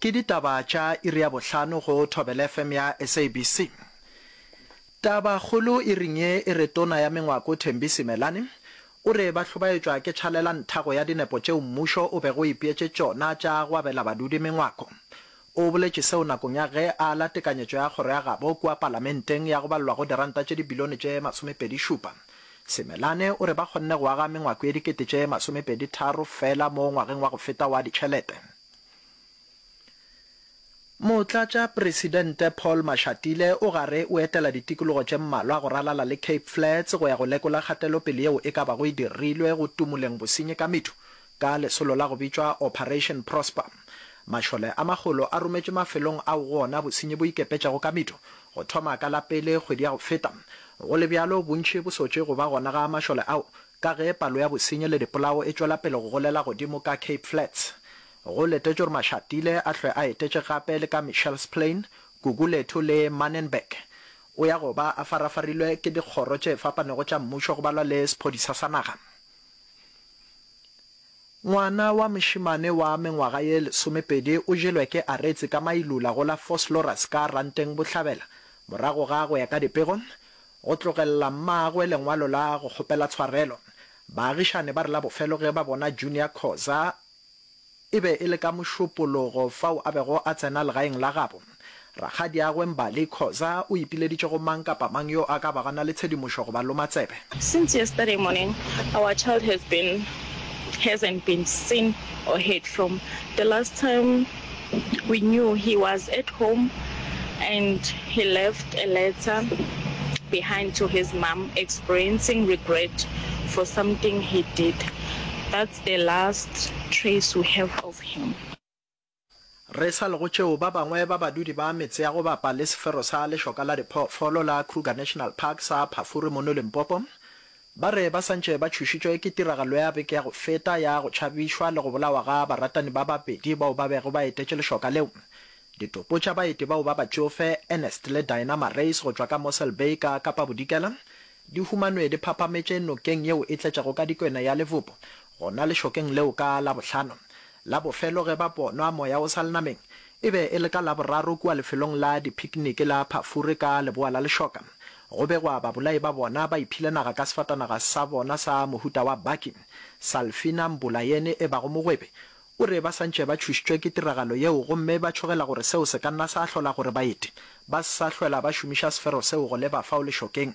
Ke ditaba tša iri ya bohlano go Thobela FM ya SABC. Taba kgolo iring ye e re Tona ya Mengwako Thembi Simelane o re ba hlobaetšwa ke tšhalela nthago ya dinepo tšeo mmušo o bego o ipeetše tšona tša go abela badudi mengwako. O boletše seo nakong ya ge a ala tekanyetšo ya kgoro ya gabo kua palamenteng ya go balelwa go diranta tše dibilione tše masomepedi šupa. Simelane o re ba kgonne go aga mengwako ye dikete tše masomepedi tharo fela mo ngwageng wa go feta wa ditšhelete. Motlatšapresidente Paul Mashatile o gare o etela ditikologo tše mmalwa go ralala le Cape Flats go ya go lekola kgatelopele yeo e ka bago e dirilwe go tumoleng bosenyi ka methu ka lesolo la go bitšwa Operation Prosper. Mašole a magolo a rometšwe mafelong ao go ona bosenyi bo ikepetšego ka methu go thoma ka la pele kgwedi ya go feta. Go le bjalo, bontši bo sotše go ba gona ga mašole ao Ka ge palo ya bosenyi le dipolao e tšwela pele go golela godimo ka Cape Flats, go letetšwe gore Mashatile a hlwe a etetše gape le ka Mitchell's Plain, Gugulethu le Manenberg. O ya go ba a farafarilwe ke dikgoro tše fapanego tša mmušo go balwa le sephodisa sa naga. Ngwana wa mošemane wa mengwaga ye lesomepedi o jelwe ke Aretsi ka mailula go la Vosloorus ka Ranteng Bohlabela morago ga, go ya ka dipego, Go tlogelela mmagwe lengwalo la go kgopela tshwarelo, baagišane ba re la bofelo ge ba bona Junior Khoza, e be e le ka Mošupologo fao a bego a tsena legaeng la gabo rakgadiagwe Mbali Khoza, o ipileditše go mang kapa mang yo a ka bago a na le tshedimošo go ba loma tsebe. Since yesterday morning our child has been hasn't been seen or heard from the last time. We knew he was at home and he left a letter behind to his mum experiencing regret for something he did. That's the last trace we have of him. Re sa le go tšeo, ba bangwe ba badudi ba metse ya go bapa le sefero sa lešoka la diphoofolo la Kruger National Park sa Phafuri mono Limpopo, Ba re ba santše ba tšhošitšwe ke tiragalo ya beke ya go feta ya go tšhabišwa le go bolawa ga baratani ba babedi bao ba bego ba etetše lešoka leo. Ditopo tša baeti bao ba batšofe, Ernest le Dinah Marais go tšwa ka Mossel Bay ka Kapa-Bodikela, di humanwe di phapametše nokeng yeo e tletšego ka dikwena ya Livopo, gona lešokeng leo ka Labohlano la bofelo ge ba bonwa moya o sa le nameng, E be e le ka Laboraro kua lefelong la diphikiniki la Pafure ka leboa la lešoka, go begwa babolai ba bona ba iphile naga ka sefatanaga sa bona sa mohuta wa baki. Salfina Mbula yene e bago mogwebi, o re ba santše ba tšhošitšwe ke tiragalo yeo gomme ba tšhogela gore seo se ka nna sa hlola gore baeti ba se sa hlwela ba šomiša sefero seo go leba fao lešokeng.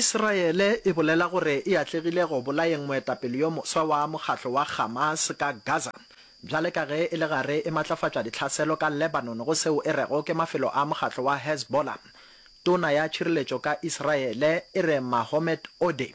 Israele e bolela gore e atlegile go bolayeng moetapele yo moswa wa mokgatlo wa Hamas ka Gaza, bjale ka ge e le gare e matlafatša ditlhaselo ka Lebanon go seo e rego ke mafelo a mokgatlo wa Hezbollah. Tona ya tšhireletšo ka Israele e re Mahomet Odeh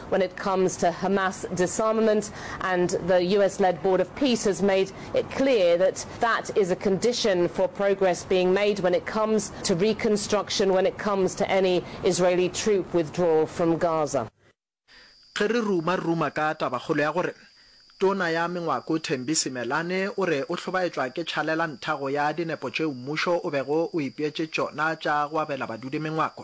When it comes to Hamas disarmament and the US-led Board of Peace has made it clear that that is a condition for progress being made when it comes to reconstruction, when it comes to any Israeli troop withdrawal from Gaza. Ge re ruma-ruma ka tabakgolo ya gore Tona ya Mengwako Thembi Simelane o re o hlobaetšwa ke tšhalela ntha go ya dinepo tšeo mmušo o bego o ipeetše tšona tša go abela badudi mengwako,